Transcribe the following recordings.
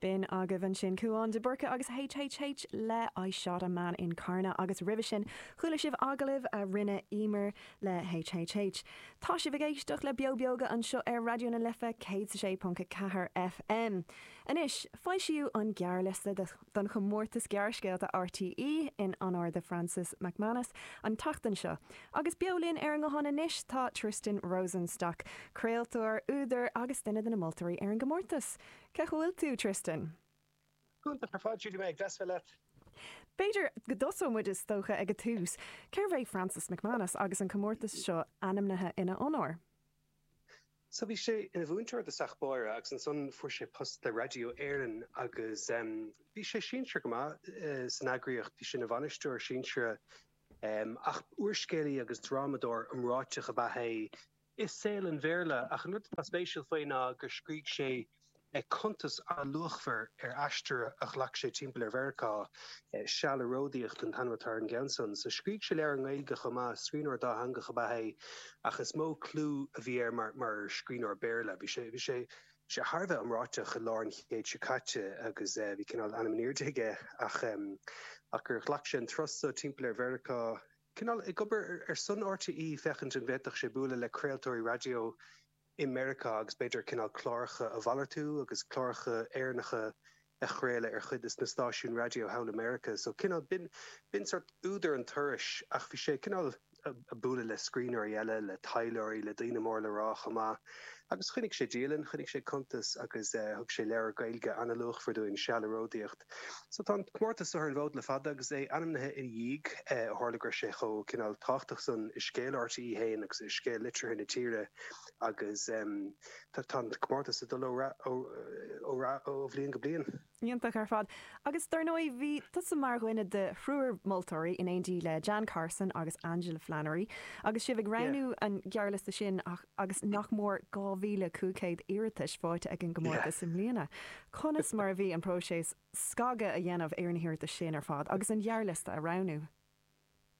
B'in agaibh ansin Cuán de Búrca agus HHH le I Shot a Man in Carna agus roimhe sin chuala sibh agallamh a rinne Emer le HHH. Tá sibh ag éisteacht le Beo Beoga anseo ar Raidió na Life 106.4 FM. Anois, foilsíodh an gearrliosta do. don chomórtas gearrscéalta RTÉ in onóir do Francis McManus an tseachtain seo. Agus beo linn ar an nguthán anois tá Tristan Rosenstock, craoltóir, údar agus duine de na moltóirí ar an gcomórtas. Cén chaoi a bhfuil tú, Tristan? Iontach ar fad, Judy, go deas a bheith leat. B'fhéidir go dtosóidh muid is dócha ag an tús. Cérbh é Francis McManus agus an comórtas seo ainmnithe ina onóir? So bhí sé ina mhúinteoir i dtosach báire agus ansan fuair sé post le Raidió Éireann agus em bhí sé sinsearach go maith san eagraíocht, bhí sé ina bhainisteoir sinsearach em ach úrscéalaí agus drámadóir iomráiteach ab ea é i saol an Bhéarla ach an rud atá spéisiúil faoi ná gur scrígh sé Cuntas an-luachmhar ar aistear a ghlac sé timpeall ar Mheiriceá Seal ag Ródaíocht an t-ainm atá ar an gceann san so. Scrígh sé leabhair i nGaeilge chomh maith. Scríbhneoir dátheangach ab ea é ach is mó clú a bhí air mar scríbhneoir Béarla. Bhí bhí sé thar a bheith iomráiteach i lár an chéid seo caite agus bhí cineál ainm in airde aige ach gur ghlac sé an turas so timpeall ar Mheiriceá, cineál ag obair ar son RTÉ féachaint an bhféadfadh sé bualadh le craoltóirí raidió. i Meiriceá agus b'fhéidir cineál cláracha a mhalartú agus cláracha Éireannacha a chraoladh ar chuid de na stáisiúin raidió thall i Meiriceá. So cineál, b'in, b'in sórt údar an turais ach bhí sé cineál a' bualadh le scríbhneoirí eile, le taidhleoirí, le daoine mór le rá chomh maith. Agus choinnigh sé dialann, choinnigh sé cuntas agus eh thug sé leabhar Gaeilge an-luachmhar dúinn, Seal ag Ródaíocht. So tá an comórtas so ar an bhfód le fada agus é ainmnithe ina dhiaidh. Ó tharla go raibh sé chomh cineál tábhachtach san i scéal RTÉ fhéin agus i scéal litríocht na tíre agus tá an comórtas ag dul ó rath ó bhliain go bliain. Iontach ar fad. Agus dár ndóigh bhí tusa mar dhuine de thriúr moltóirí in éindí le Jan Carson agus Angela Flannery agus sibh ag roghnú an ghearrliosta sin. agus nach mór 2,500 iarratais fáighte ag an gcomórtas i mbliana, conas mar a bhí an próiseas scagadh a dhéanamh ar na hiarratais sin ar fad agus an gearrliosta a roghnú?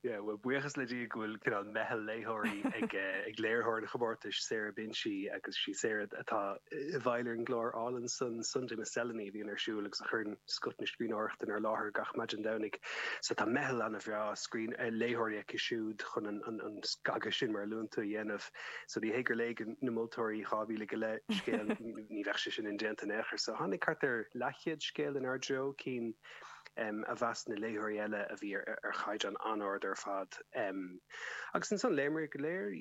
Yeah, bhuel, buíochas le Dia go bhfuil cineál meitheal léitheoirí ag léiritheoir an chomórtais, Sarah Binchy, agus sí Sarah atá. i bhfeighil ar an gclár álainn san Sunday Miscellany a bhíonn ar siúl agus a chuireann scoth na scríbhneoireachta inár láthair gach maidin Domhnaigh. So tá meitheal ana-bhreá scríbh, eh, léitheoirí aici siúd chun an, an, an scagadh sin mar a luann tú a dhéanamh. So ní hé gur léigh na moltóirí dhá mhíle go leith scéal, ní bheadh sé sin indéanta in aon chor. So tháinig thart ar leathchéad scéal inár dtreo, cinn. a mheas na léitheoirí eile a bhí ar chaighdeán an-ard ar fad. Agus ansan, léimid go léir,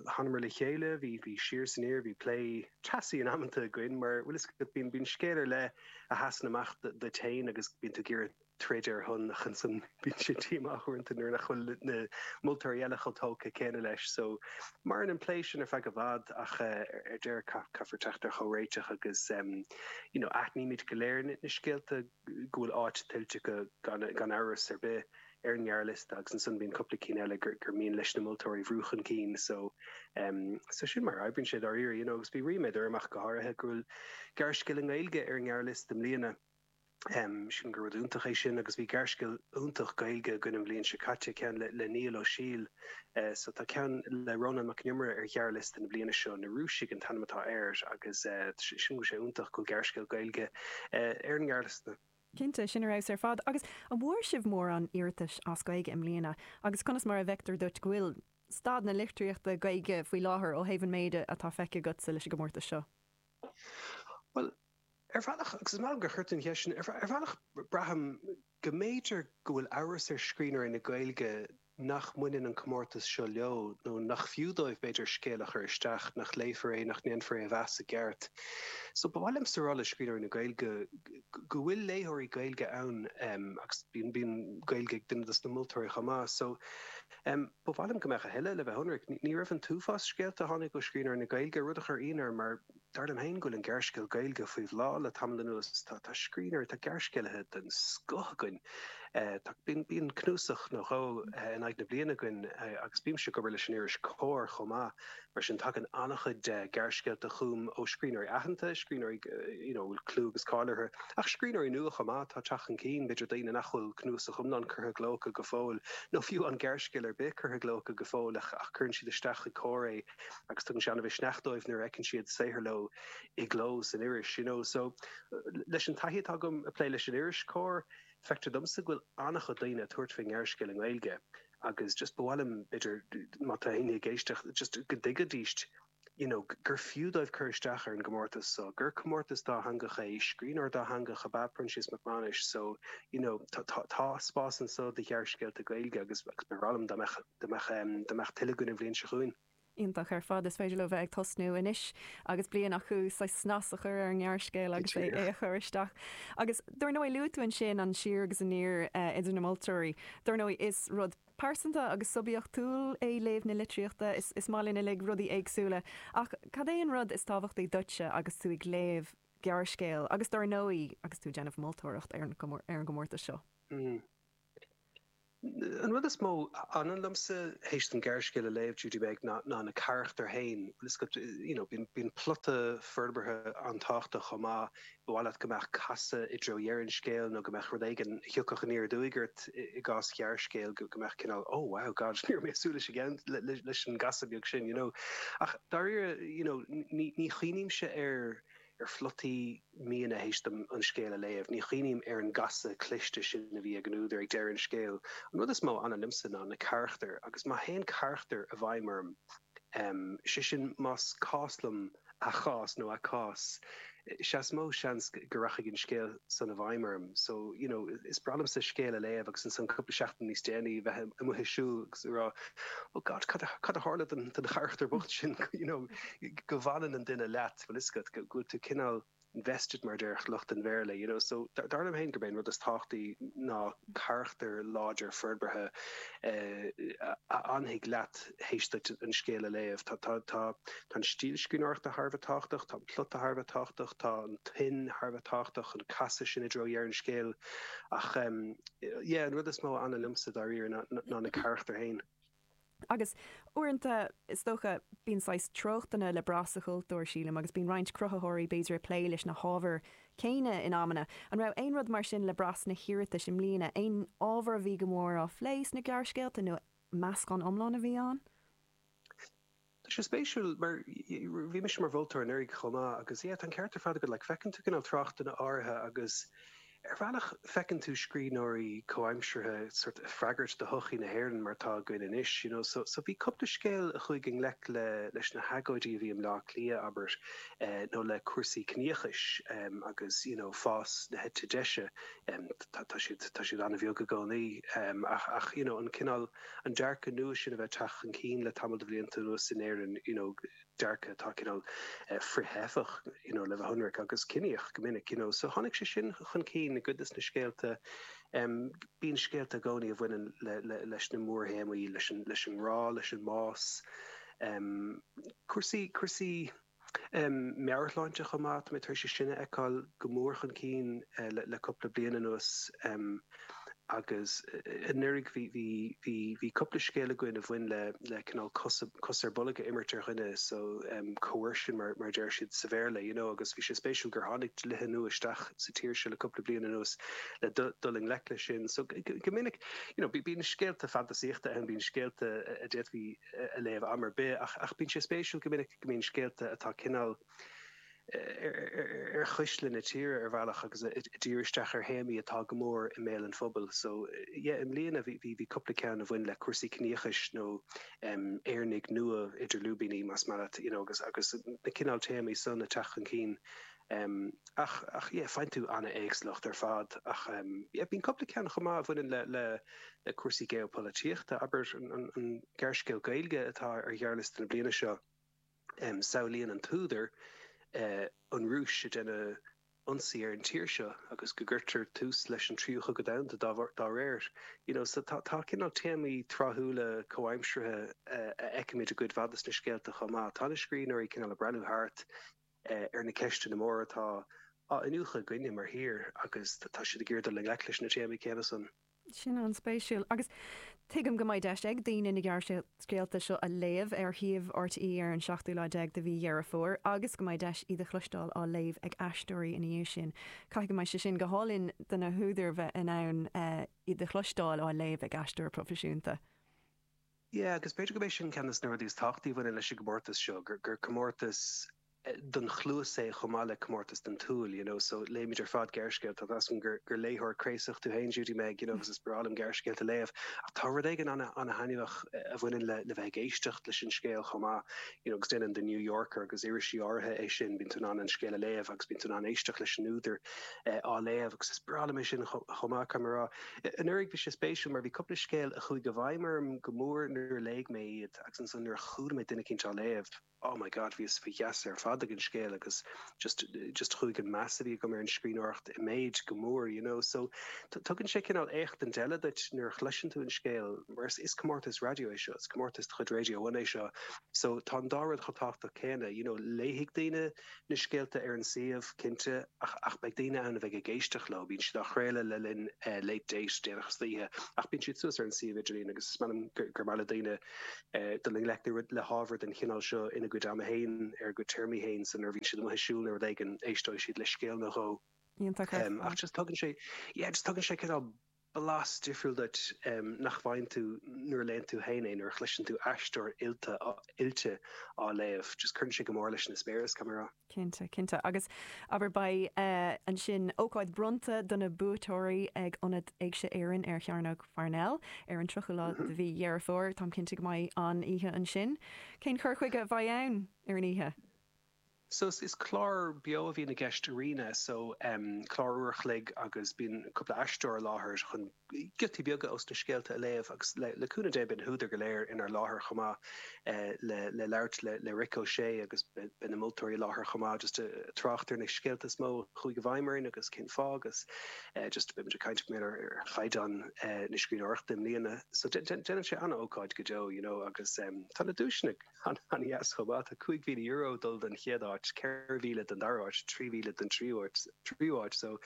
thánamar le chéile, bhí siar is aniar, bhí plé teasaí in amanta againn, mar bhuel is cosúil go mbíonn scéal ar leith a sheasann amach duit féin agus go mbíonn tú ag iarraidh troid ar a shon ach ansan bíonn tú díomách uaireanta nuair nach bhfuil na moltóirí eile chomh tógtha céanna leis. So, maireann an plé sin ar feadh i bhfad ach ar deireadh caithfear teacht ar chomhréiteach agus. You know, aithnímid go léir na scéalta go bhfuil áit tuillte acu gan amhras ar bith ar an ngearrliosta agus ansan bíonn cúpla ceann eile gur mian leis na moltóirí a bhrú chun cinn so um so sin mar a oibríonn sé dáiríre you know agus bhí ríméad orm ach go háirithe go bhfuil gearrscéal i nGaeilge ar an ngearrliosta i mbliana. sílim gur rud iontach é sin agus bhí gearrscéal iontach Gaeilge againn an bhliain seo caite, ceann le Niall Ó Siadhail so tá ceann le Rónán Mac an Iomaire ar ghearrliosta na bliana seo, Na Rúisigh an t-ainm atá air agus sílim go bhfuil sé iontach go bhfuil gearrscéal Gaeilge ar an ngearrliosta. Cinnte, sin ar fheabhas ar fad. Agus an bhfuair sibh mórán iarratais as Gaeilge i mbliana agus conas mar a fheictear duit go bhfuil staid na litríochta Gaeilge faoi láthair ó thaobh an méid atá feicthe agatsa leis an gcomórtas seo? Bhuel, Ar bhealach, agus is maith liom gur chuir tú an cheist sin, ar bhealach braithim go mb'fhéidir go bhfuil amhras ar scríbhneoirí na Gaeilge nach mbaineann an comórtas seo leo nó nach fiú dóibh b'fhéidir scéal a chur isteach nach léifear é, nach ndéanfar é a mheas i gceart. So ba mhaith liomsa a rá le scríbhneoirí na Gaeilge go bhfuil léitheoirí Gaeilge ann agus bíonn Gaeilge ag duine dos na moltóirí chomh maith. So ba mhaith liom go mbeadh a thuilleadh, le bheith ionraic. Ní raibh an t-uafás scéalta a tháinig ó scríbhneoirí na Gaeilge, rud a chuir ionadh orm mar, Dar liom féin go bhfuil an gearrscéal Gaeilge faoi bhláth le tamall anuas. Tá scríbhneoirí, tá gearrscéalaithe den scoth againn. Bíonn cnuasach nó dhó in aghaidh na bliana againn agus bímse ag obair leis an iris Comhar chomh maith, mar sin tagann an-chuid gearrscéalta chugam ó scríbhneoirí aitheanta, scríbhneoirí you know a bhfuil clú agus cáil orthu, ach scríbhneoirí nua chomh maith atá ag teacht chun cinn, b'fhéidir daoine nach bhfuil cnuasach iomlán curtha i gcló acu go fóill, nó fiú aon ghearrscéal ar bith curtha i gcló acu go fóill ach cuireann siad isteach chuig Comhar é. agus tugann sé an-mhisneach dóibh nuair a fheiceann siad saothar leo i gcló san iris. You know, so, leis an taithí atá agam ag plé leis an iris Comhar, feictear domsa go bhfuil an-chuid daoine ag tabhairt faoin ngearrscéal i nGaeilge agus just ba mhaith liom, b'fhéidir, má tá éinne ag éisteacht, just go dtuigfidíst you know, gur fiú dóibh cur isteach ar an gcomórtas so, gur comórtas dátheangach é, scríbhneoir dátheangach ab ea Proinsias Mac Mánais so, you know, tá spás anso do ghearrscéalta Gaeilge agus ba bhreá liom dá mbeadh. dá mbeadh, dá mbeadh tuilleadh againn an bhliain seo chugainn. Iontach ar fad. Is féidir leo bheith ag tosnú anois agus bliain acu saghas snas a chur ar an ngearrscéal agus é a chur isteach. Agus dár ndóigh, luaigh tú ansin an siar agus aniar idir na moltóirí. Dár ndóigh, is rud pearsanta agus suibiachtúil é léamh na litríochta. Is is maith linn uilig rudaí éagsúla. Ach cad é an rud is tábhachtaí duitse agus tú ag léamh gearrscéil agus dár ndóigh agus tú ag déanamh moltóireacht ar an ar an gcomórtas seo? Mm. An rud is mó a fhanann liomsa théis dom gearrscéal a léamh, déarfainn, ná na carachtair féin. You know, bíonn plota forbartha an-tábhachtach chomh maith. Ba mhaith leat go mbeadh casadh i dtreo dheireadh an scéil nó go mbeadh rud éigin a thiocfadh aniar aduaidh ort, i gcás ghearrscéil, go mbeadh cineál Oh wow, God, ní raibh mé ag súil leis leis an gcasadh beag sin, you know. Ach dáiríre, you know, ní chuimhnímse ar. ar phlotaí miona théis dom an scéal a léamh. Ní chuimhním ar an gcasadh cliste sin a bhí ag an údar ag deireadh an scéil. An rud is mó a fhanann liomsa ná na carachtair agus má théann carachtar i bhfeidhm orm, sé sin más cás liom a chás nó a cás, sea is mó seans go rachaidh an scéal san i bhfeidhm orm. So, you know, is breá liomsa scéal a léamh agus ansan cúpla seachtain níos déanaí a bheith amuigh ag siúl agus ag rá oh God cad a tharla don charachtar bocht sin, you know, go bhfanann an duine leat. Tá a fhios agat go bhfuil tú cineál invested mar a déarfadh lucht an Bhéarla, you know, so dar liom féin gurb é an rud is tábhachtaí ná carachtar láidir forbartha a fhanfaidh leat théis duit an scéal a léamh. Tá an stíl scríbhneoireachta thar a bheith tábhachtach, tá an plota thar a bheith tábhachtach, tá an tuin thar a bheith tábhachtach, an casadh sin i dtreo dheireadh an scéil ach, yeah, an rud is mó a fhanann liomsa dáiríre ná na carachtair féin. Agus uaireanta, is dócha, bíonn saghas treochtanna le brath sa chultúr, sílim, agus bíonn roinnt cruthaitheoirí b'fhéidir ag plé leis na hábhair céanna in amanna. An raibh aon rud mar sin le brath sna hiarratais i mbliana? Aon ábhar a bhí go mór á phlé sna gearrscéalta nó meascán iomlán a bhí ann? Tá sé spéisiúil mar bhí mise mar mholtóir anuraidh chomh maith agus yeah tá an ceart ar fad agat like feiceann tú cineál treochtanna áirithe agus ar bhealach feiceann tú scríbhneoirí comhaimseartha sórt ag freagairt do shochaí na hÉireann mar atá againn anois you know so bhí cúpla scéal a chuaigh i ngleic le leis na hagóidí a bhí i mBleá Cliath abair nó le cúrsaí ciníochais agus you know fás na heite deise tá siad tá siad an-bheag i gcónaí ach you know an cineál an dearcadh nua sin a bheith ag teacht chun cinn le tamall de bhlianta anuas in Éirinn, you know dearcadh atá cineál frith-theifeach you know le bheith ionraic, agus ciníoch go minic, you know. So tháinig sé sin chun cinn i gcuid de na scéalta. Em bíonn scéalta i gcónaí a bhaineann le, le, leis na mórthéamaí, leis an, leis an ngrá, leis an mbás, em cúrsaí, cúrsaí. meabhairshláinte chomh maith. Tá mé tar éis é sin a fheiceáil go mór chun cinn le cúpla bliain anuas agus anuraidh bhí cúpla scéal againn a bhain le le cineál cos ar bolg a imirt ar dhuine, so coercion mar a deir siad sa Bhéarla, you know, agus bhí sé spéisiúil gur tháinig dlíthe nua isteach sa tír seo le cúpla bliain anuas le dul i ngleic leis sin. So go minic, you know, bíonn scéalta fantasaíochta ann, bíonn scéalta a d'fhéadfaí, a léamh am ar bith ach bíonn sé spéisiúil go minic go mbíonn scéalta atá cineál ar chuisle na tíre ar bhealach agus ag díriú isteach ar théamaí atá go mór i mbéal an phobail. So yeah i mbliana bhí bhí cúpla ceann a bhain le cúrsaí ciníochais nó em Éireannaigh nua idir lúibíní más maith leat you know agus agus na cineál téamaí san ag teacht chun cinn em. ach, ach yeah faigheann tú an-éagsúlacht ar fad ach em. yeah bíonn cúpla ceann chomh maith a bhaineann le, le, le cúrsaí geopolaitíochta. Abair an, an, an gearrscéal Gaeilge atá ar ghearrliosta na bliana seo, em. samhlaíonn an t-údar eh. an Rúis ag déanamh ionsaí ar an tír seo agus go gcuirtear tús leis an Tríú Cogadh Domhanda dá bharr, dá réir. You know so tá, tá cineál téamaí tráthúla comhaimseartha a fheicimid i gcuid mhaith de sna scéalta chomh maith. Tá na scríbhneoirí cineál ag breathnú thart. ar na ceisteanna móra atá á iniúchadh againne mar thír agus tá siad ag iarraidh dul i ngleic leis na téamaí céanna san. Sin an-spéisiúil. Agus tuigim go mbeidh deis ag daoine na gearrscéalta seo a léamh ar shuíomh RTÉ ar an seachtú lá déag de mhí Dheireadh Fómhair agus go mbeidh deis iad a chloisteáil á léamh ag aisteoirí ina dhiaidh sin. Caithfidh go mbeidh sé sin go hálainn do na húdair bheith in ann iad a chloisteáil á léamh ag aisteoir proifisiúnta. Yeah, agus b'fhéidir gurb é sin ceann dos na rudaí is tábhachtaí a bhaineann leis an gcomórtas seo, gur comórtas don chluas é chomh maith le comórtas don tsúil, you know. So, léimid ar fad gearrscéalta, measaim gur gur léitheoir craosach tú féin Judy Meg, you know, agus is breá liom gearrscéalta a léamh, ach tá rud éigin ana ana thaitneamhach a bhaineann le le bheith ag éisteacht leis an scéal chomh maith, you know, agus déanann The New Yorker agus irisí áirithe é sin, bíonn tú in ann an scéal a léamh agus bíonn tú in ann éisteacht leis an údar á léamh agus is breá liom é sin chomh maith, caithfidh mé a rá. Anuraidh bhí sé spéisiúil mar bhí cúpla scéal a chuaigh i bhfeidhm orm go mór nuair a léigh mé iad agus ansan nuair a chuala mé duine eicínt á léamh, oh my God, bhíos faoi gheasa ar fad ag an scéal agus just, just chuaigh an meas a bhí agam ar an scríbhneoireacht i méid go mór, you know. So tugann sé cineál léachtaint eile duit nuair a chloiseann tú an scéal mar is, is comórtas raidió é seo, is comórtas de chuid Radio One é seo so tá an dá rud chomh tábhachtach céanna, you know, léifidh daoine, na scéalta ar an suíomh, cinnte, ach, ach beidh daoine ann a bheidh ag éisteacht leo, bíonn siad á chraoladh le linn eh Late Date, déanach istoíche, ach bíonn siad suas ar an suíomh idirlín agus is measaim gur, gur maith le daoine eh dul i ngleic le rud, le hábhar den chineál seo ina gcuid ama fhéin, ar a gcuid téarmaí fhéin so nuair a bhíonn siad amuigh ag siúl nó rud éigin, éisteoidh siad le scéal nó dhó. Iontach ar fad. Em, ach just tugann sé, yeah, just tugann sé cineál blas difriúil duit nach bhfaigheann tú nuair a léann tú héin é, nuair a chloiseann tú aisteoir oilte oilte á léamh. Just cuireann sé go mór leis an eispéireas, caithfidh mé a rá. Cinnte, cinnte. Agus, abair, beidh, eh, ansin ócáid bronnta do na buaiteoirí ag Ionad Éigse Éireann ar Chearnóg Pharnell ar an 30ú lá de mhí Dheireadh Fómhair. Táim cinnte go mbeidh an-oíche ansin. Cén cur chuige a bheidh ann ar an oíche? So is clár beo a bhíonn i gceist Arena so em clár uair a chloig agus bíonn cúpla aisteoir i láthair chun giotaí beaga ós na scéalta a léamh agus le le cúnamh Dé beidh na húdair go léir in ann a bheith i láthair chomh maith eh le le labhairt le le Rick O'Shea agus beidh beidh na moltóirí i láthair chomh maith just ag trácht ar na scéalta is mó a chuaigh i bhfeidhm orainn agus cén fáth agus eh just beimid ag caint b'fhéidir ar ar chaighdeán eh na scríbhneoireachta i mbliana so dé dé déanann sé ana-ócáid go deo you know agus em tá na duaiseanna an-dheas chomh maith. Tá €5,000 ag dul don chéad áit, 4,000 don dara áit, 3,000 don tríú áit so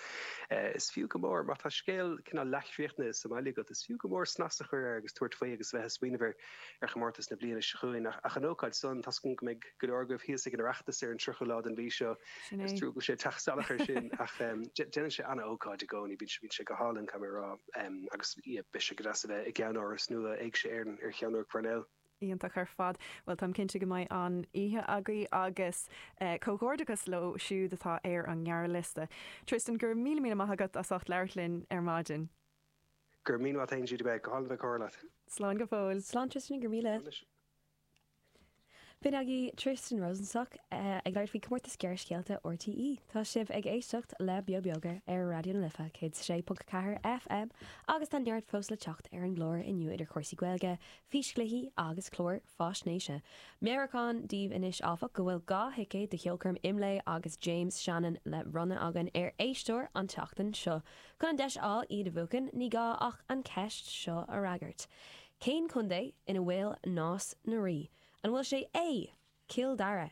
is fiú go mór. Má tá scéal cineál leath-chríochnaithe sa mbaile agat, is fiú go mór snas a chur air agus tabhairt faoi agus a bheith ag smaoineamh ar chomórtas na bliana seo chugainn. Ach an ócáid san, tá 's agam go mbeidh go leor agaibh thíos ag an Oireachtas ar an 30ú lá den mhí seo. Sin é. Is trua go bhfuil sé ag teacht salach ar sin ach déanann sé ana-ócáid i gcónaí. Bíonn sé go hálainn, caithfidh mé a rá. Agus beidh sé go deas a bheith i gceannáras nua Éigse Éireann ar Chearnóg Pharnell. Iontach ar fad. Bhuel, táim cinnte go mbeidh an-oíche agaibh agus comhghairdeachas leo siúd atá ar an ngearrliosta. Tristan, go raibh míle míle maith agat as ucht labhairt linn ar maidin. Go raibh míle maith agat, bhí sé go hálainn a bheith ag comhrá leat. Slán go fóill. Slán Tristan, go raibh míle. B'in agaibh Tristan Rosenstock ag labhairt faoi Comórtas Gearrscéalta RTÉ. Tá sibh ag éisteacht le Beo Beoga ar Raidió na Life 106.4 FM agus tá neart fós le teacht ar an gclár inniu idir cúrsaí Gaeilge, físchluichí agus cláir faisnéise. Meabhrúchán daoibh anois, áfach, go bhfuil dhá thicéad do cheolchoirm Imlé agus James Shannon le bronnadh againn ar éisteoir an tseachtain seo. Chun an deis a fháil iad a bhuachan ní gá ach an cheist seo a fhreagairt. Cén contae ina bhfuil Nás na Rí? An bhfuil sé i A. Cill Dara.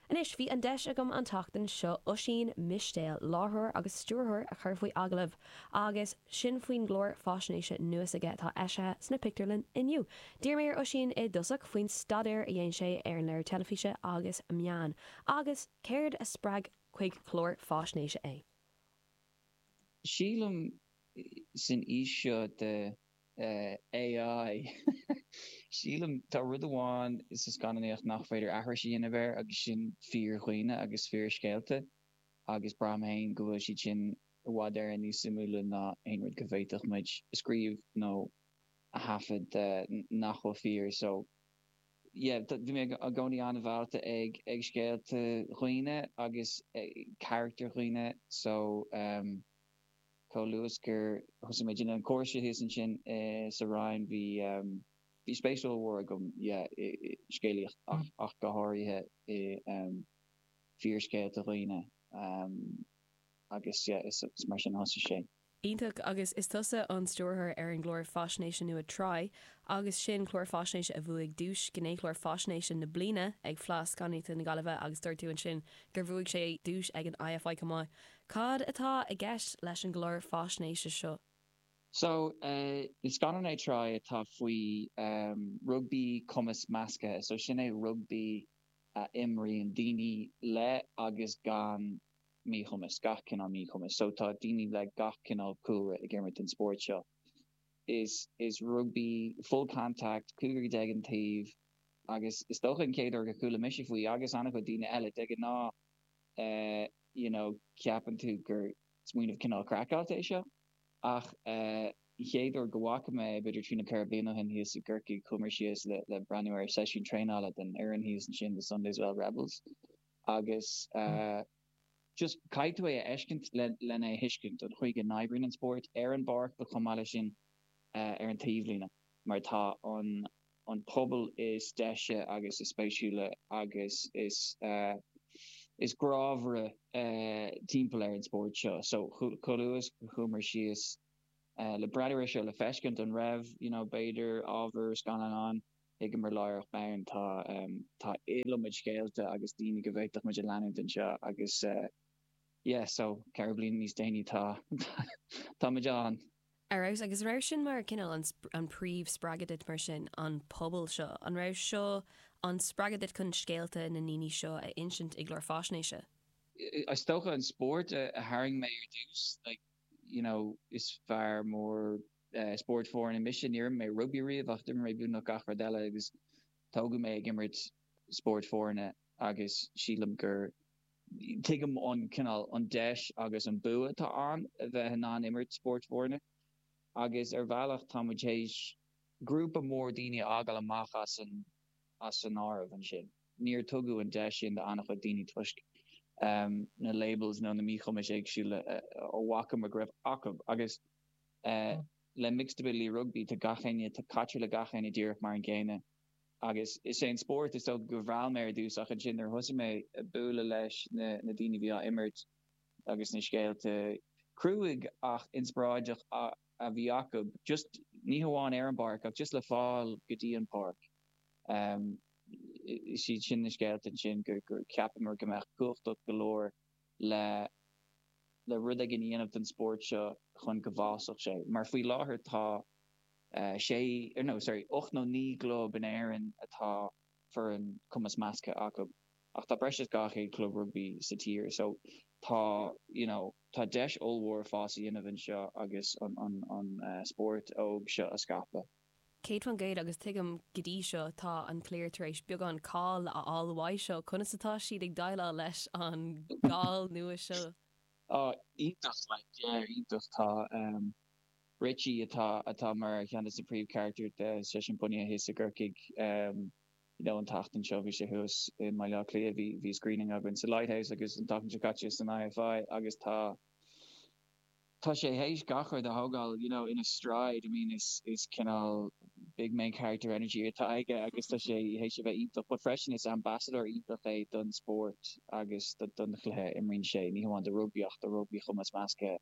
Anois bhí an deis agam an tseachtain seo Oisín Mistéil, láithreoir agus stiúrthóir a chur faoi agallamh agus sin faoin gclár faisnéise nua s'aige atá eisithe sna pictiúrlanna inniu. D'iarr mé ar Oisín i dtosach faoin staidéar a dhein sé ar an léiriú teilifíse agus meán agus céard a spreag chuig clár faisnéise é. Sílim, san aois seo de AI, sílim, tá rud amháin sa scannánaíocht nach féidir aithris a dhéanamh air agus sin fíor-dhaoine agus fíor-scéalta agus braithim féin go bhfuil siad sin i bhfad Éireann níos suimiúla ná aon rud go bhféadfadh muid a scríobh nó a thaifead nach bhfuil fíor. So, yeah, bhí mé i gcónaí an-mheallta ag scéalta dhaoine agus carachtair dhaoine so, um. Chomh luath is gur thosaigh mé ag déanamh an chúrsa thíos ansin sa Rinn, bhí bhí spéis ollmhór agam yeah i scéalaíocht ach ach go háirithe i fíorscéalta dhaonna agus yeah is mar sin a thosaigh sé. Iontach, agus is tusa an stiúrthóir ar an gclár faisnéise nua Try agus sin, clár faisnéise a bhuaigh duais Gnéchlár Faisnéise na Bliana ag Fleadh Scannánaíochta na Gaillimhe agus dúirt tú ansin gur bhuaigh sé duais ag an IFI chomh maith. Cad atá i gceist leis an gclár faisnéise seo? So, is scannán é Try atá faoi rugbaí cumas measctha. So, sin é rugbaí a imríonn daoine le agus gan míchumas, gach cineál míchumas. So, tá daoine le gach cineál cúlra ag imirt an spóirt seo. Is is rugbaí full contact, cúigear déag an taobh agus is dócha an chéad uair gur chuala mise faoi agus an-chuid daoine eile. De ghnáth, eh you know ceapann tú gur smaoineamh cineál craiceáilte é seo ach eh an chéad uair go bhfaca mé é b'fhéidir trí nó ceithre bliana ó shin thíos i gCorcaigh chuamar síos le le breathnú ar seisiún traenála den fhoireann thíos ansin The Sunday's Well Rebels agus eh just caithfidh tú é a fheiscint le len é a thuiscint an chaoi go n-oibríonn an spórt ar an bpáirc ach chomh maith leis sin eh ar an taobhlíne mar tá an an pobal is deise agus is spéisiúla agus is is grámhara timpeall ar an spórt seo. So chomh luath is chuamar síos le breathnú air seo le feiscint an raibh you know b'fhéidir ábhar scannáin ann, thuigeamar láithreach bonn tá tá iliomad scéalta agus daoine go bhféadfadh muid a leanúint anseo agus yeah so ceithre bliana níos déanaí tá táimid ann. Ar fheabhas. Agus an raibh sin mar cineál an príomh spreagadh duit mar sin, an pobal seo? An raibh seo an spreagadh duit chun scéalta na ndaoine seo a insint i gclár faisnéise? Is dócha an spórt a tharraing mé ar dtús. Like, you know, is fear mór spóirt foirne mise. Níor imir mé rugbaí riamh ach d'imir mé beagnach gach rud eile agus tógadh mé ag imirt spóirt foirne agus sílim gur. Tuigim an cineál, an deis agus an bua atá ann a bheith in ann imirt spóirt foirne. Agus ar bhealach tá muid théis grúpa mór daoine a fhágáil amach as an as an áireamh ansin. Níor tugadh an deis sin do an-chuid daoine toisc na labels nó na míchumais éagsúla a bhfaca muid go raibh acu. Agus le Mixed Ability Rugby tá gach éinne, tá caitear le gach éinne díreach mar an gcéanna. Agus is é an spórt, is dócha a mheall mé ar dtús ach ansin nuair a thosaigh mé a bualadh leis na daoine a bhí á imirt agus na scéalta crua ach inspioráideach a bhí acu, just ní hamháin ar an bpáirc ach just le fáil go dtí an pháirc, is iad sin na scéalta ansin gur cheapamar go mbeadh cumhachtach go leor. le le rud éigin a dhéanamh don spórt seo chun go bhfásfadh sé. Mar faoi láthair tá sé no sorry ocht nó naoi gclub in Éirinn a bhfuil foireann cumas measctha acu ach tá breis is dhá chéad club rugbaí sa tír so tá you know tá deis ollmhór fás a dhéanamh anseo agus an spórt óg seo a scaipeadh. Céad faoin gcéad, agus tuigim go dtí seo, tá an chliar tar éis beagán cáil a fháil uaidh seo. Conas atá siad ag déileáil leis an gcáil nua seo? Á, iontach, like, yeah, iontach. Tá Richie, atá, atá mar cheann de na príomhcharactair de Sunday's Well thíos i gCorcaigh, you know, an tseachtain seo bhí sé thuas i mBaile Átha Cliath, bhí, bhí screening againn sa Lighthouse agus an tseachtain seo caite san IFI agus tá, tá sé théis gach rud a thógáil you know ina stride, I mean is is cineál big main character energy atá aige agus tá sé théis a bheith iontach but freisin is ambassador iontach é don spórt agus don chluiche a imríonn sé, ní hamháin do rugbaí ach do rugbaí chumas measctha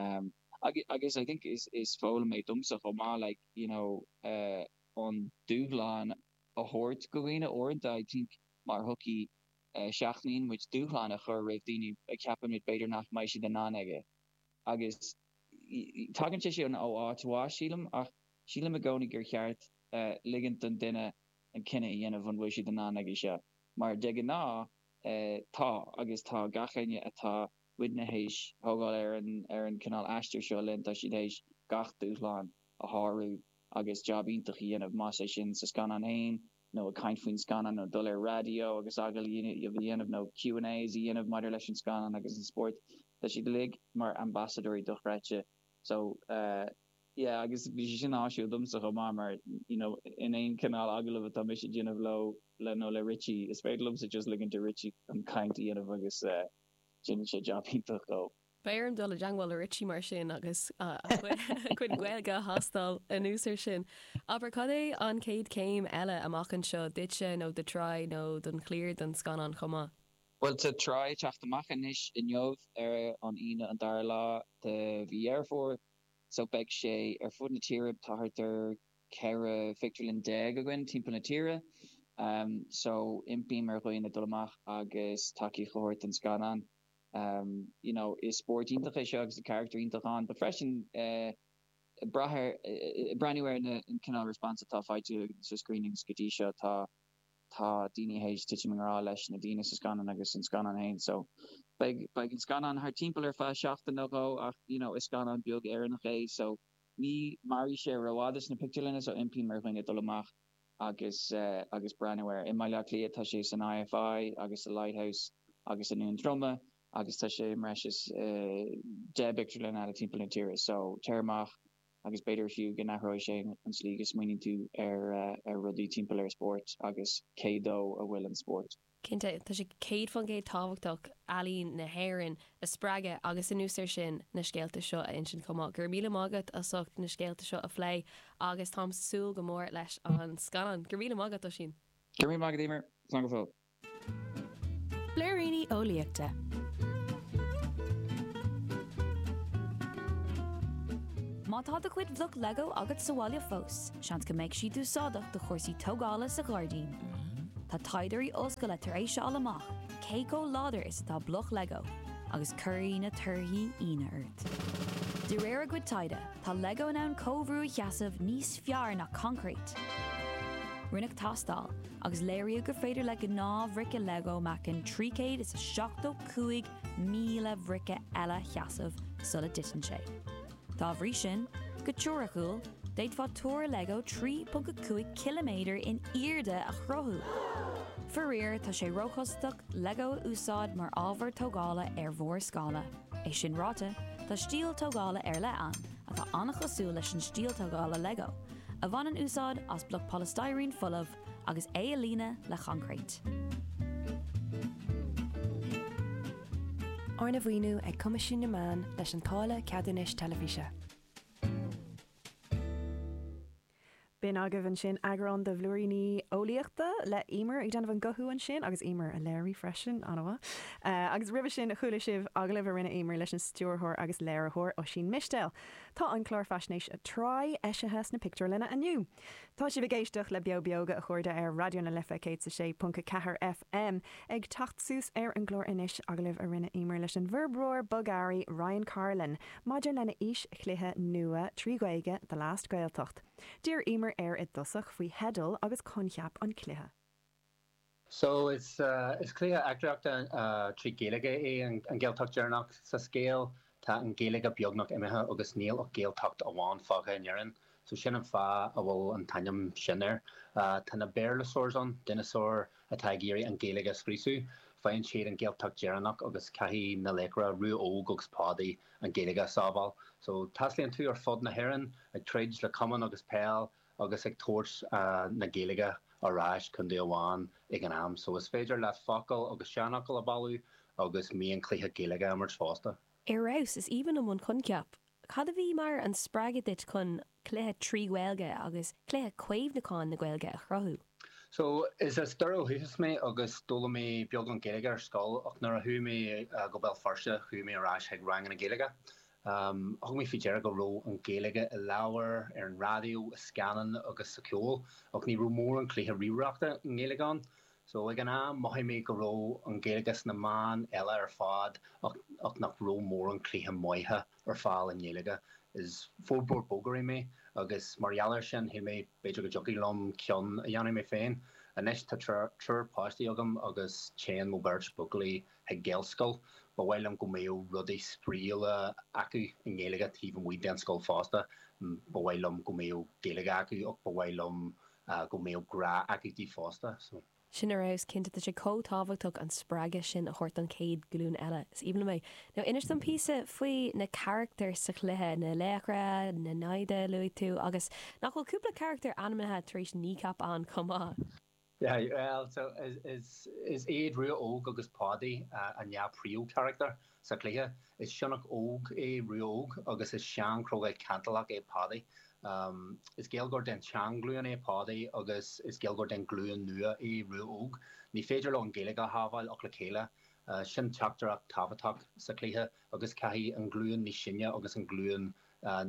um agus agus I think is is foghlaim é domsa chomh maith like you know eh an dúshlán a thabhairt do dhaoine uaireanta I think mar shochaí Seachnaíonn muid dúshlán a chur roimh daoine a cheapaimid b'fhéidir nach mbeidh siad in ann aige. Agus tagann sé sin ó áit mhaith, sílim, ach sílim i gcónaí gur cheart ligint don duine an cinneadh a dhéanamh an bhfuil siad in ann aige seo. Mar de ghnáth tá, agus tá gach éinne atá muidne théis a thógáil ar an chineál aistir seo linn, tá siad théis gach dúshlán a shárú agus jab iontach a dhéanamh, más é sin sa scannán féin, nó ag caint faoin scannán nó dul ar raidió agus agallaimh a dhéanamh nó Q and A's a dhéanamh maidir leis an scannán agus an spórt. Tá siad uilig mar ambasadóirí dochreidte. So yeah agus bhí sé sin áisiúil domsa chomh maith mar you know in aon chineál agallamh atá mise a dhéanamh leo le nó le Richie is féidir liomsa just ligint do Richie an chaint a dhéanamh agus déanann sé jab iontach chomh Beidh orm dul i dteangmháil le Richie mar sin agus a chuid Gaeilge a thástáil anuas ar sin. Abair, cad é an chéad chéim eile amach anseo, duitse nó do Try nó don chliar don scannán chomh maith? Bhuel, tá Try ag teacht amach anois, inniu, ar an Aoine an dara lá de mhí Dheireadh Fómhair, so beidh sé ar fud na tíre, tá thart ar 14 phictiúrlann againn timpeall na tíre, so impím ar dhaoine dul amach agus tacaíocht a thabhairt don scannán. you know is spórt iontach é seo agus tá carachtair iontach ann but freisin ag brath ar ag breathnú ar na an cineál response atá faighte sa screenings go dtí seo tá tá daoine théis titim i ngrá leis na daoine sa scannán agus an scannán féin so beidh beidh an scannán thart timpeall ar feadh seachtain nó dhó ach you know is scannán beag Éireannach é so ní mairfidh sé rófhada sna pictiúrlanna so impím ar dhaoine dul amach agus agus breathnú air. I mBaile Átha Cliath tá sé san IFI agus sa Lighthouse agus i nDún Droma agus tá sé i mbreis is deich bpictiúrlann eile timpeall na tíre. So, téir amach agus b'fhéidir fiú go n-athróidh sé an tslí go smaoiníonn tú ar rudaí timpeall ar spórt agus cé dó a bhfuil an spórt. Cinnte, tá sé céad fán gcéad tábhachtach ealaín na hÉireann a spreagadh agus anuas ar sin, na scéalta seo a insint chomh maith. Go raibh míle maith agat as ucht na scéalta seo a phlé agus táim súil go mór leis an scannán. Go raibh míle maith agat, Oisín. Go raibh míle maith agat, Emer. Slán go fóill. Blúiríní Eolaíochta. Má tá do chuid bloc Lego agat sa bhaile fós. Seans go mbeidh siad úsáideach do chúrsaí tógála sa ghairdín. Tá taighdeoirí ollscoile tar éis a fháil amach cé chomh láidir is atá bloc Lego agus cuirfidh na torthaí ionadh ort. De réir a gcuid taighde, tá Lego in ann comhbhrú a sheasamh níos fearr ná concrete! Rinneadh tástáil agus léiríodh gur féidir le gnáth-bhrice Lego meáchan 375,000 bhrice eile a sheasamh sula dtiteann sé. Dá bhrí sin, go teoiriciúil, d'fhéadfá túr Lego 3.5 km in airde a chruthú! Faraor, tá sé róchostasach Lego a úsáid mar ábhar tógála ar mhórscála. É sin ráite, tá stíl tógála ar leith ann, atá an-chosúil leis an stíl tógála Lego, a bhaineann úsáid as bloc polystyrene folamh, agus é a líonadh le choincréit. Arna mhaoiniú ag Coimisiún na Meán leis an táille ceadúnais teilifíse. B'in agaibh ansin eagrán de Bhlúiríní Eolaíochta le Emer ag déanamh an guthú ansin agus Emer á léiriú freisin, an-mhaith. Agus roimhe sin chuala sibh agallamh a rinne Emer leis an stiúrthóir agus léiritheoir Oisín Mistéil. Tá an clár faisnéise Try eisithe sna pictiúrlanna inniu. Tá sibh ag éisteacht le Beo Beoga, a chairde, ar Raidió na Life 106.4 FM. Ag teacht suas ar an gclár anois, agallamh a rinne Emer leis an bhforbróir bogearraí Ryan Carlin, maidir lena fhís-chluiche nua trí Ghaeilge, The Last Gaeltacht. D'iarr Emer air i dtosach faoi theideal agus coincheap an chluiche. So, is cluiche eachtraíochta trí Ghaeilge é An Gaeltacht Deireanach. Sa scéal, tá an Ghaeilge beagnach imithe agus níl ach Gaeltacht amháin fágtha in Éirinn, so sin an fáth a bhfuil an t-ainm sin air. Tá na Béarlasaurs ann, dineasáir atá ag iarraidh an Ghaeilge a scriosadh. Faigheann siad an Gaeltacht Deireanach agus caithfidh na laochra, Rua Óg agus Pádaí, an Ghaeilge a sábháil. So, taistealaíonn tú ar fud na hÉireann, ag troid le camán agus peil agus ag tabhairt na Gaeilge ar ais chun tí amháin ag an am. So is féidir leat focail agus seanfhocail a bhailiú agus mionchluichí Gaeilge a imirt fosta. Ar fheabhas! Is aoibhinn liom an coincheap. Cad a bhí mar spreagadh duit chun cluiche trí Ghaeilge agus cluiche caomhnúchán na Gaeilge a chruthú? So, is as Doire ó dhúchas mé agus d'fhoghlaim mé beagán Gaeilge ar scoil ach nuair a chuaigh mé go Béal Feirste chuaigh mé ar ais chuig ranganna Gaeilge Thug mé faoi deara go raibh an Ghaeilge i leabhair, ar an raidió, i scannáin agus sa cheol, ach ní raibh mórán cluichí ríomhaireachta i nGaeilge ann. So, ag an am, mhothaigh mé go raibh an Ghaeilge sna meáin eile ar fad ach nach raibh mórán cluichí maithe ar fáil i nGaeilge. Is forbróir bogearraí mé agus mar gheall ar sin, shíl mé b'fhéidir go dtiocfadh liom ceann a dhéanamh mé féin. Anois, tá triúr páistí agam agus téann mo bheirt bhuachaillí ag Gaelscoil. Ba mhaith liom go mbeadh rudaí spraíula acu i nGaeilge taobh amuigh den scoil fosta. Ba mhaith liom go mbeadh Gaeilge acu ach ba mhaith liom go mbeadh grá acu di fosta. So. Sin ar fheabhas cinnte. Tá sé chomh tábhachtach an spreagadh sin a thabhairt don chéad ghlúin eile. Is aoibhinn liom é. Now inis dom píosa faoi na carachtair sa chluiche, na laochra, na naimhde a luaigh tú agus nach bhfuil cúpla carachtar ainmnithe tar éis Kneecap ann chomh maith? Aye, well, so is, is, is iad Rua Óg agus Páidí an dhá phríomhcharachtar sa chluiche. Is sionnach óg é Rua Óg agus is seanchrogall cantalach é Páidí. Is Gaeilgeoir den tseanghlúin é Páidí agus is Gaeilgeoir den ghlúin nua é Rua Óg. Ní féidir leo an Ghaeilge a shábháil ach le chéile. Sin teachtaireacht tábhachtach sa chluiche agus caithfidh an ghlúin níos sine agus an ghlúin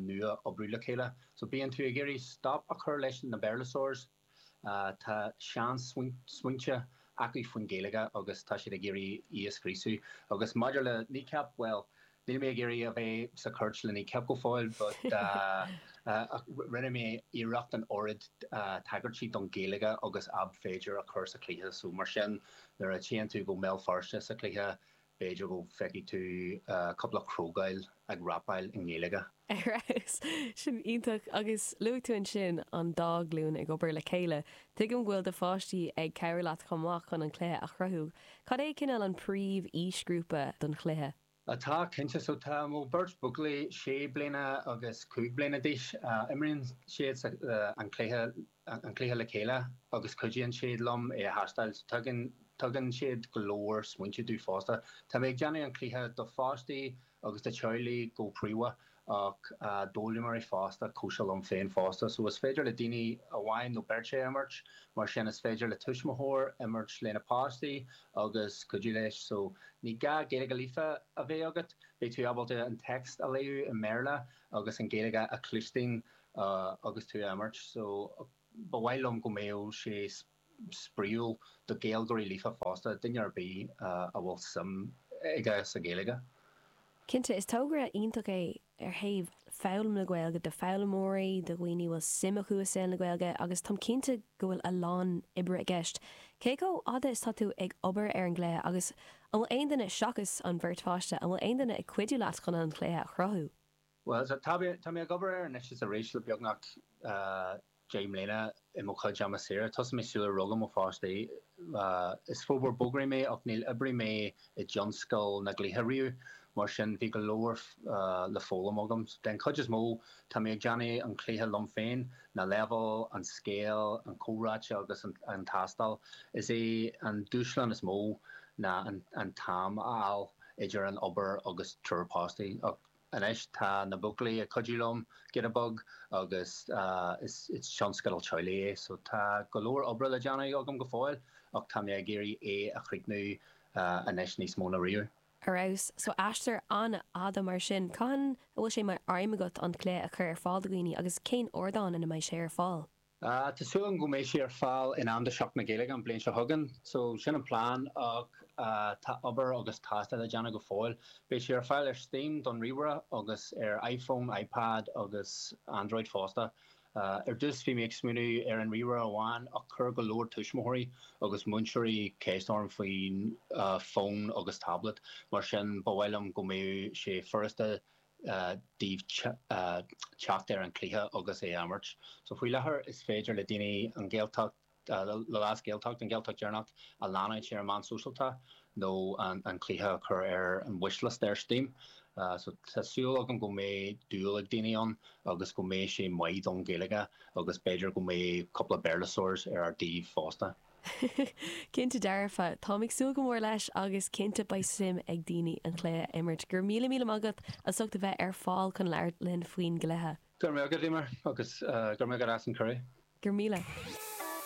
nua oibriú le chéile. So bíonn tú ag iarraidh stop a chur leis na Béarlasaurs. Tá seansmaointe acu faoin Ghaeilge agus tá siad ag iarraidh í a scriosadh. Agus maidir le Kneecap, bhuel, níl mé ag iarraidh a bheith sa chúirt le Kneecap go fóill but ach rinne mé iarracht an oiread tagairtí don Ghaeilge agus ab fhéidir a chur sa chluiche so mar sin nuair a téann tú go Béal Feirste sa chluiche B'fhéidir go bhfeicfidh tú cúpla crogall ag rapáil i nGaeilge. Ar fheabhas! Sin iontach! Agus luaigh tú ansin an dá ghlúin ag obair le chéile. Tuigim go bhfuil do pháistí ag cabhrú leat chomh maith chun an cluiche a chruthú. Cad é cineál an príomh-aoisghrúpa don chluiche? Tá, cinnte. So tá mo beirt buachaillí, sé bliana agus cúig bliana d'aois. Imríonn siad an cluiche. an cluiche le chéile agus cuidíonn siad liom é a thástáil. Tugann siad go leor smaointe domh fosta. Tá mé ag déanamh an cluiche do pháistí agus do theaghlaigh go príomha ach d'fhoghlaimeoirí fosta, cosúil liom féin fosta. So is féidir le duine amháin nó beirt é a imirt, mar sin is féidir le tuismitheoir imirt lena páiste agus cuidiú leis. So ní gá Gaeilge líofa a bheith agat, beidh tú ábalta an text a léamh i mBéarla agus an Gaeilge a chluinstin agus tú á imirt so ba mhaith liom go mbeadh sé spraíúil do Gaeilgeoirí líofa fosta, duine ar bith a bhfuil suim aige sa Ghaeilge. Cinnte, is tógra iontach é ar thaobh foghlaim na Gaeilge, do foghlaimeoirí, do dhaoine a bhfuil suim acu i saol na Gaeilge agus táim cinnte go bhfuil a lán oibre i gceist. Cé chomh fhada is atá tú ag obair ar an gcluiche agus an bhfuil aon duine, seachas an bheirt pháiste, an bhfuil aon duine ag cuidiú leat chun an cluiche a chruthú? Bhuel, tá mé ag obair air anois is arís le beagnach deich mbliana i mo chuid ama saoire. Thosaigh mé sular rugadh mo pháistí. Is forbróir bogearraí mé ach níor oibrigh mé i dtionscal na gcluichí riamh, mar sin bhí go leor le foghlaim agam. Den chuid is mó, tá mé ag déanamh an cluiche liom féin, na leibhéil, an scéal, na comhráite agus an tástáil. Is é an dúshlán is mó ná an t-am a fháil idir an obair agus triúr páistí. Anois tá na buachaillí ag cuidiú liom, Get a Bug, agus is tionscadal teaghlaigh é so tá go leor oibre le déanamh agam go fóill ach tá mé ag iarraidh é a chríochnú anois níos mó ná riamh. Ar fheabhas. So aistear an-fhada mar sin. Cathain a bhfuil sé mar aidhm agat an cluiche a chur ar fáil do dhaoine agus cén ardán ina mbeidh sé ar fáil? Ah, tá súil agam go mbeidh sé ar fáil in am do Sheachtain na Gaeilge an bliain seo chugainn. So, sin an plean ach tá obair agus tástáil le déanamh go fóill. Beidh sé ar fáil ar Steam don ríomhaire agus ar iPhone, iPad agus Android fosta. Ar dtús bhí mé ag smaoineamh ar an ríomhaire amháin ach chuir go leor tuismitheoirí agus múinteoirí ceist orm faoin fón agus tablet mar sin ba mhaith liom go mbeadh sé furasta daofa teacht ar an cluiche agus é a imirt. So faoi láthair is féidir le daoine an Gaeltacht, The Last Gaeltacht, an Gaeltacht Deireanach a leanúint ar na meáin shóisialta nó an cluiche a chur ar an wishlist ar Steam. So tá súil agam go mbeidh dúil ag daoine ann agus go mbeidh sé maith don Ghaeilge agus b'fhéidir go mbeidh cúpla Béarlasóir ar ár dtaobh fosta. Cinnte dearfa. Táim ag súil go mór leis agus cinnte beidh suim ag daoine an cluiche a imirt. Go raibh míle míle maith agat as ucht a bheith ar fáil chun labhairt linn faoin gcluiche. Go raibh maith agat, Eimear, agus go raibh maith agat as an cuireadh. Go raibh míle.